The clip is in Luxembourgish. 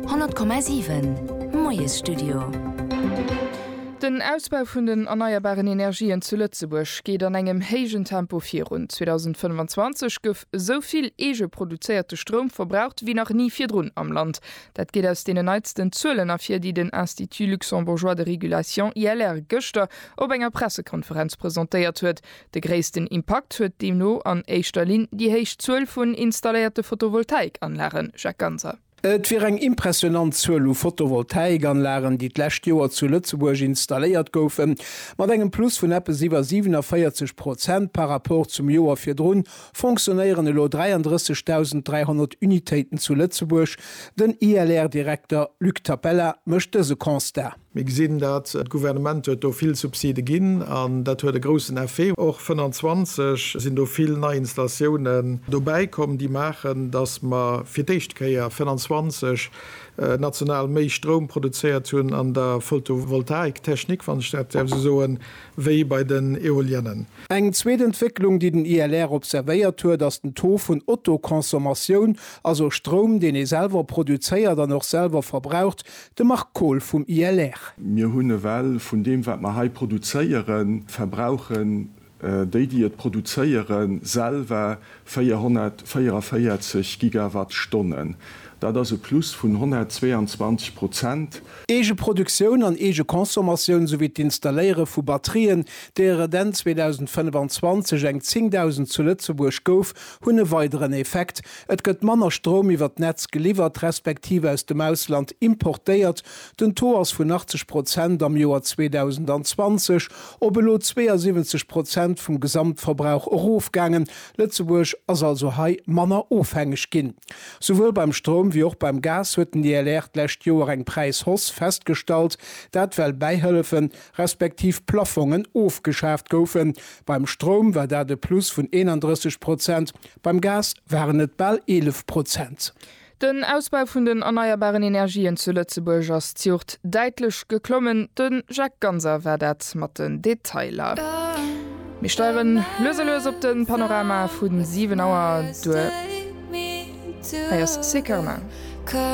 100,7 Moiesstudio. Den Ausbau vun den erneierbaren Energien zu Lëtzebuerg geet an engem héijen Tempo virun. 2025 gouf esou vill eege produzéierte Stroum verbraucht wéi nach ni virdrun am Land. Dat geet aus deenen neitsten Zuelen ervir, déi den Institut luxembourgeois de régulation, ILR, gëschter op enger Pressekonferenz presentéiert huet. De gréissten Impakt huet deemno an éischter Linn déi héich Zuel vun installéierte Photovoltaikanlagen, Jacques Ganser. Et wier eng impressionant Zuel u Photovoltaikanlagen, déi d'lescht Joer zu Lëtzebuerg installéiert goufen, mat engem Plus vun eppes iwwer 47 Prozent par rapport zum Joer virdrun fonctionnéieren elo 33.300 Unitéiten zu Lëtzebuerg. Den ILR-Direkter Luc Tapella mécht dëse Constat. Mir gesinn dat, d'Gouvernement huet do vill Subside ginn an dat huet e groussen Effet. Och 25 sinn do vill nei Installatiounen dobäi komm, déi maachen, datt mer fir d'éischt Kéier 25 national méi Stroum produzéiert hunn an der Photovoltaik-Technik, wann ech dat däerf esou soen, wéi bei den Eoliennen. Eng zweet Entwécklung, déi den ILR observéiert huet, ass den Taux vun Autoconsommatioun, also Stroum, deen ee selwer produzéiert an och selwer verbraucht, De Marc Kohl vum ILR. Mir hunn ewell vun deem, wat mer hei produzéieren, verbrauchen déi, déi et produzéieren, selwer 444 Gigawattstonnen. Dat ass e Plus vun 122 Prozent. Eegeproduktioun an Eegeconsommatioun souwéi d'Installéiere vu Batterien, deeër et Enn 2025 eng 10.000 zu Lëtzebuerg gouf, hunn e weideren Effekt, Et gëtt manner Stroum iwwer d'Netz geliwwert, respektiv aus dem Ausland importéiert, den Taux ass vun 80 Prozent am Joer 2020 op elo 72 Prozent vum Gesamtverbrauch erofgaangen. Lëtzebuerg ass also hei manner ofhängeg ginn. Souwuel beim Stroum wéi och beim Gas huet den DLR d'lescht Joer eng Präishausse festgestallt, dat well Bäihëllefen, respektiv Plaffongen ofgeschaaft goufen. Beim Stroum war dat e Plus vun 31 Prozent, Beim Gas waren et bal 11 Prozent. Den Ausbau vun den erneierbaren Energien zu Lëtzebuerg ass d'Juegd däitlech geklommen. De Jacques Ganser war dat mat den Detailer. Mir steieren lues a lues op de Panorama vu 7 Auer duer. Hei ass Sekarma.